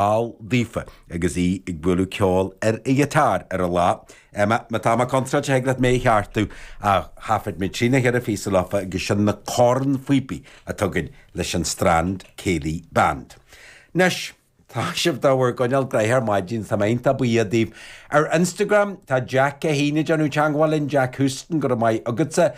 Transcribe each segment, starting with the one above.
Al daofa agus é ag bualadh ceoil ar a ghiotár ar an lá. Emma, Má tá mé contráilte thig leat mé a cheartú ach thaifid mé trí nó cheithre phíosa leofa agus sin na cornphíopaí a tugainn leis an Strand Céilí Band. Anois, tá sibh dá bhur gcoinneáil graithe ar maidin, tá mé iontach buíoch daoibh. Ar Instagram, tá Jack i ndiaidh a bheith ag déanamh teangmháil linn, Jack Houston, go raibh maith agatsa.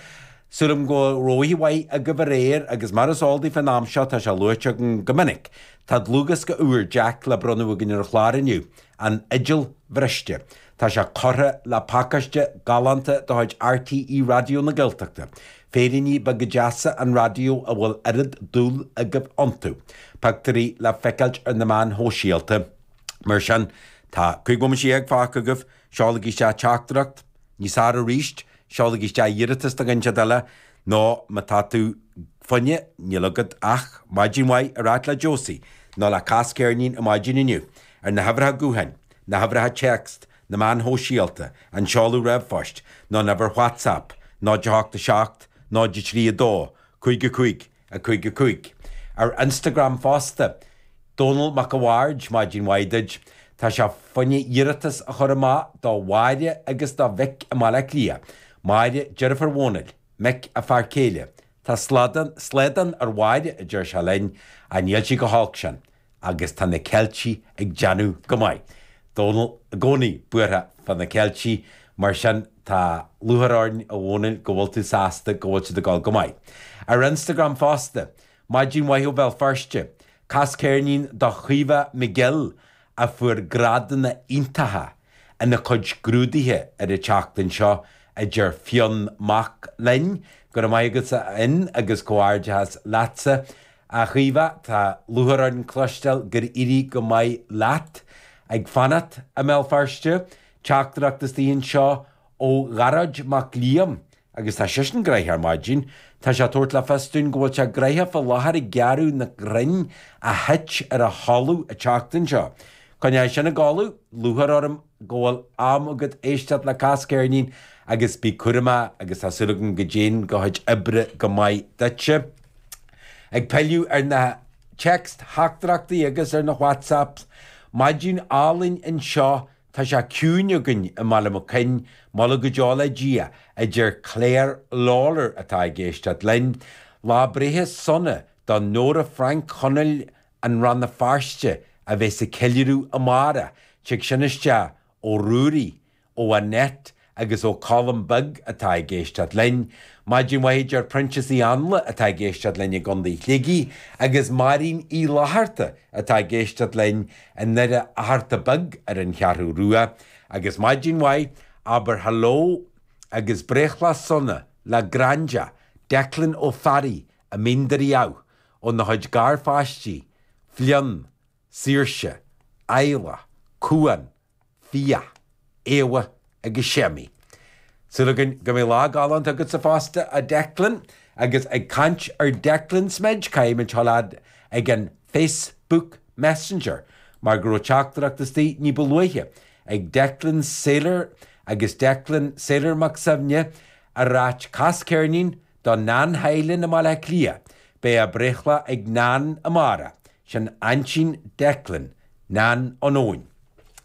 Sílim go raibh oíche mhaith agaibh aréir agus mar is eol daoibh fén am seo tá sé luaite agam go minic, tá dlúthdhiosca úr Jack le bronnadh againn ar an chlár inniu, An Fhidil Bhriste. Tá sé curtha le pacáiste galánta de chuid RTÉ Raidió na Gaeltachta. Féiríní beaga deasa an raidió a bhfuil oiread dúile agaibh iontu. Pictiúirí le feiceáilt ar na meáin shóisialta. Mar sin, tá cúig bhomaite dhéag fágtha agaibh. Seolaigí isteach teachtaireacht níos fearr aríst, seolaigí isteach iarratas do dhuine éigint eile nó má tá tú fonnmhar níl agat ach maidin mhaith a ráit le Josie nó le Cas Ceirnín ar maidin inniu ar na huimhreacha gutháin, na huimhreacha téacs, na meáin shóisialta, an seoladh ríomhphoist nó an uimhir WhatsApp 087 03 2 55 5, 5. ar Instagram fosta. Dónal Mac a' Bhaird, Maidin mhaith duit. Tá sé fonnmhar iarratas a chur amach do Mháire agus do Mhick i mBaile Átha Cliath. Máire deirfiúr Dhónail, Mick a fear céile. Tá slaghdán ar Mháire a deir sé linn, ach níl sí chomh holc sin. agus tá na Ceiltigh ag déanamh go maith. Dónal i gcónaí buartha fá na Ceiltigh, mar sin tá lúchair orainn a Dhónail go bhfuil tú sásta go bhfuil siad ag gabháil go maith. Ar Instagram fosta, Maidin mhaith ó Bhéal Feirste! Cas ceirnín do Chaoimhe McGill a fuair grádanna iontacha Ina cuid scrúdaithe ar an tseachtain seo a deir Fionn Mac Fhloinn, Go raibh maith agat a Fhinn agus comhghairdeachas leatsa a Chaoimhe, tá lúchair orainn cloisteáil gur éirigh go maith leat ag fanacht i mBéal Feirste. Teachtaireacht istigh anseo ó Ghearóid Mac Liam agus tá seisean graithe ar maidin. Tá sé ag tabhairt le fios dúinn go bhfuil sé graithe fá láthair ag gearradh na gcrann a thit ar a thalamh an tseachtain seo. Coinneoidh sin ag gabháil thú, lúcháir orm go bhfuil am agat éisteacht le Cas Ceirnín agus bí cúramach agus tá súil agam go dtéann do chuid oibre go maith duitse. Ag pilleadh ar na téacstheachtaireachtaí agus ar na whatsapps, maidin álainn anseo Tá sé ciúin againn i mBaile Mac Coinn, moladh go deo le Dia, a deir Claire Lawlor atá ag éisteacht linn. Lá breithe sona do Nóra Frainc Chonaill i Rann na Feirste a bheas ag ceiliúradh amárach. Tig sin isteach ó Ruairí, ó Annette agus ó Colm Beg atá ag éisteacht linn. Maidin mhaith deir Proinsias Uí Anla atá ag éisteacht linn i gContae Shligigh agus Máirín Uí Fhlaithearta atá ag éisteacht linn i nDoire Fhatharta Beag ar an Cheathrú Rua. Agus maidin mhaith, abair hello agus breithlá sona le Graindea, Declan Ó Fearraigh, i Mín Doire Dhamh, óna chuid garpháistí, Fionn, Saoirse, Aela, Cuán, Fiadh, Éabha agus Séamaí. Súil againn go mbeidh lá galánta agatsa fosta, a Declan. Agus ag caint ar Declans muid, caithfidh muid a ghabháil fhad leis an Facebook Messenger mar go raibh teachtaireacht istigh ní ba luaithe ag Declan Sailor agus Declan Sailor Mac Suibhne ag ráit cas ceirnín Do Nan Heilin i mBaile Átha Cliath beidh a breithlá ag Nan amárach, sin aintín Declan, Nan Eoin.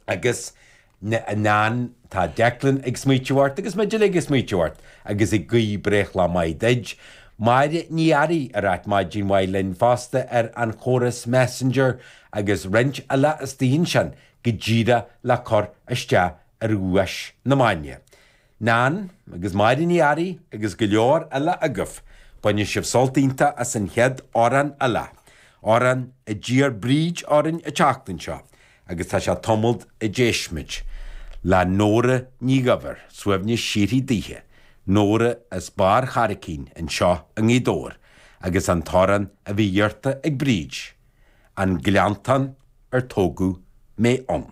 Agus a Nan, tá Declan ag smaoitiú ort agus muid uilig ag smaoitiú ort agus ag guí breithlá maith duid. Máire Ní Fhearraigh ag ráit maidin mhaith linn fosta ar an chóras Messenger agus roinnt eile istigh ansin go díreadh le cur isteach ar dhuais na maidne. Nan, agus Máire Ní Fhearraigh agus go leor eile agaibh, baineann sibh sult iontach as an chéad amhrán eile, amhrán a d'iarr Bríd orainn an tseachtain seo, agus tá sé tamall ó d'éist muid le Nóra Ní Dhuibhir, suaimhneas síoraí daoithe, Nóra as Barr Charraicín anseo i nGaoth Dobhair, agus an t-amhrán a bhí iarrta ag Bríd, An Gleanntán ar Tógadh mé Ann.